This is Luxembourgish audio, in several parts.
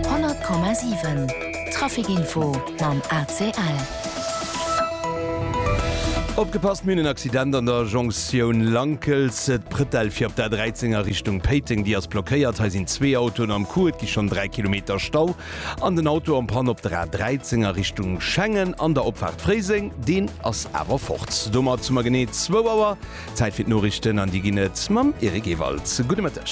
100,7 Trafic Info mam ACL. Opgepasst, mir hunn en Accident an der Jonktioun Lankels, d'Pretelle fir op der A13 a Richtung Péiteng, déi ass blockéiert. Hei sinn zwee Autoen am Coup, et gi schonn 3 Kilometer Stau an den Auto en panne op der A13 a Richtung Schengen an der Opfaart Fréiseng, deen ass awer fort. Domat hu mer genee zwou Auer. Zäit fir d'Noriichten an déi ginn et mam Eric Ewald. Gudde Mëtteg.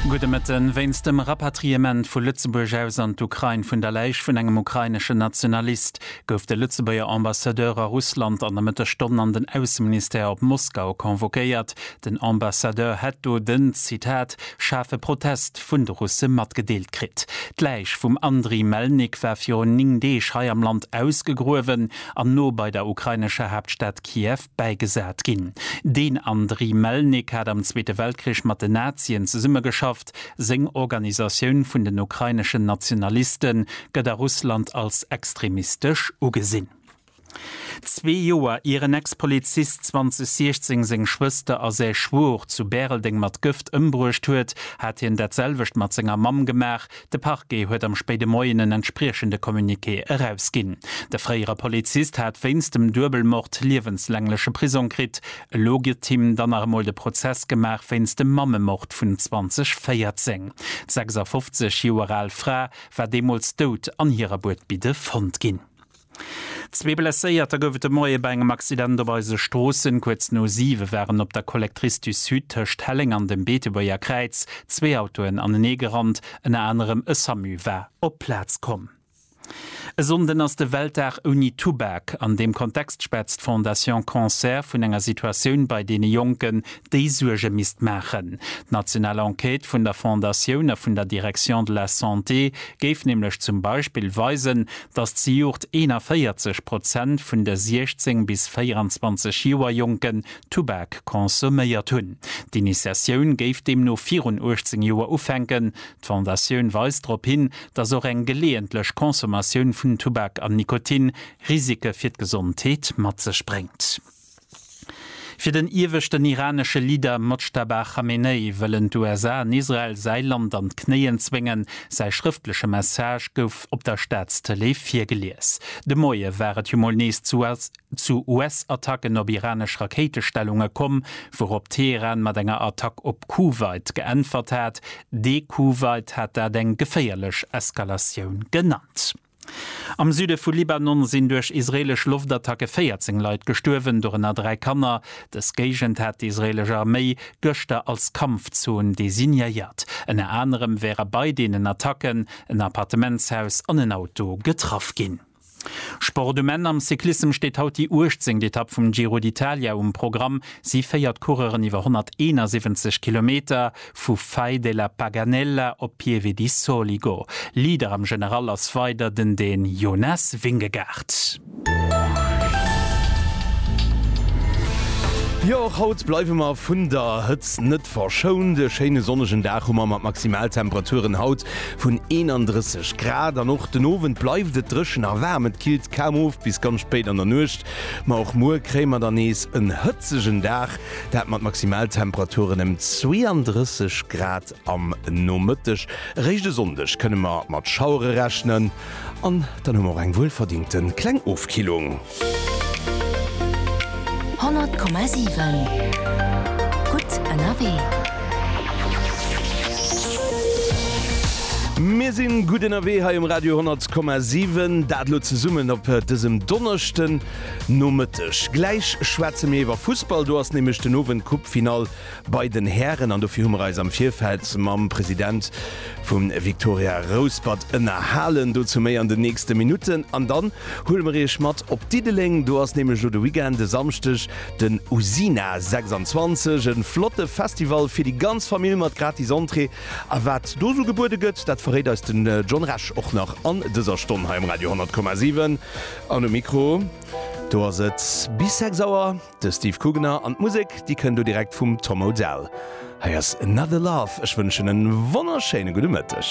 Gudde Mëtten. Wéinst dem Rapatriement vu Lëtzebuerg aus an d'Ukrain vun der Läich vun engem ukraineschen Nationalist gouf de Lëtzebuerger Ambassadeur a Russland an der Mëttesstonn an den Ausseministère op Moskau convoquéiert. Den Ambassadeur hätt do den, Zitat, schaarfe Protest vun de Russe matgedeelt kritt. D'Läich vum Andriy Melnik war virun 9 Deeg hei am Land ausgegruewen. an no bei der ukrainescher Haaptstad Kiew bäigesat ginn. Den Andriy Melnik hat am Zweete Weltkrich mat den Nazien zesummegeschafft. Seng Organisatioun vun den ukraineschen Nationaliste gëtt a Russland als extremistesch ugesinn. Zwee Joer ier en Ex-Polizist 2016 seng Schwëster a säi Schwor zu Bäreldeng mat Gëft ëmbruecht huet, hat hien dat selwecht mat senger Mamm gemaach. De Parquet huet am spéide Moien en entspriechende Communiqué erausginn. De fréiere Polizist hat wéinst dem Duebelmord liewenslängleche Prisong kritt. Elo gëtt him dann nach emol de Prozess gemaach wéinst dem Mammemord vun 2014. D'sechs a fofzeg Joer al Fra war deemools dout an hirer Buedbidde fonnt ginn. Zwee Blesséierter gouf et de Moie bei engem Accident op eise Stroossen. Kuerz no 7 waren op der Collectrice du Sud tëscht Helleng an dem Beetebuerger Kräiz zwee Autoen anenee gerannt. Ënner anerem e Samu war op d'Plaz komm. E Sonnden ass de Weltdag ouni Tubak. An deem Kontext schwätzt d'Fondation Cancer vun enger Situatioun bei deene Jonken, déi Suerge misst maachen. D'national Enquête vun der Fondatioun a vun der Direction de la Santé géif nämlech zum Beispill weisen, dass zejoert 41 Prozent vun de 16 bis 24 Joer Jonken Tubak consomméiert hunn. D'Initiatioun géif deemno virun 18 Joer ufänken. D'Fondatioun weist drop hin, dass och eng geleeëntlech Consommatioun vun Tubak an Nikotin Risike fir d'Gesondheet mat sech bréngt. Fir den ieweschten iranesche Leader Mojtaba Khamenei wëllen d'USA an Israel säi Land an d'Knéien zwéngen. Säi schrëftleche Message gouf op der Staatstëlee virgelies. De Moie war et jo mol nees zu US-Attacken op iranesch Rakéitestellunge komm, wourop Teheran mat enger Attack op Kuwait geäntwert hat. De Kuwait hat dat eng geféierlech Eskalatioun genannt. Am Süde vu Libanon sinn duerch israeelesch Loftattacke 14 Leit gestuerwen, dorënner dräi Kanner. Dës Géigend hat d'israeelesch Arméi gëschter als Kampfzon designéiert. Ënner anerem wäre bei deenen Attacken en Appartementshaus an en Auto getraff ginn. Sport um Enn, Am Cyclissem steet haut déi uechtzéngt Etapp vum Giro d'Italia um Programm. Si féiert d'Coureuren iwwer 171 Kilometer. Vu Fai della Paganella op Pieve di Soligo, Lieder am General ass weider den den Jonas Vingegaard. Jo, och haut bleiwe mer vun der Hëtzt net verschount. E schéine sonnegen Dag hu mer mat Maximaltemperaturen haut vun 31 Grad an och den Owend bleift et dréchen a waarm. Et killt kaum of bis ganz spéit an der Nuecht, ma och muer kréie mer dann nees en hëtzegen Dag. Dat mat Maximaltemperaturen ëm 32 Grad am Nomëtteg. Eréischt e Sonndeg kënne mer mat Schauere rechnen an dann hu mer och eng wuelverdingte kleng Ofkillung. 100,7 Gutt ënnerwee. Mir sinn gutt ënnerwee hei um Radio 100,7. Dat elo zesummen op dësem Donneschden. Nomëtteg. Gläich schwätze mir iwwer Fussball, do ass nämlech den Owend Coupe-Finall bei den Hären an dofir hu mer eis am Virfeld mam President vum Victoria Rouspert ënnerhalen. Dozou méi an den nächste Minutten an dann huele mer iech mat op Diddeleng, do ass nämlech elo de Weekend, e Samschdeg den Usina 26, e flotte Festival fir déi ganz Famill mat gratis Entrée a wat do esou gebuede gëtt, dat verréit eis den John Resch och nach an dëser Stonn hei um Radio 100,7. An um Mikro, do ass et bis 6 Auer de Steve Kugener an d'Musek, déi kënnt elo direkt vum Tom Odell. Hei ass Another Love. Ech wënschen e wonnerschéine gudde Mëtteg.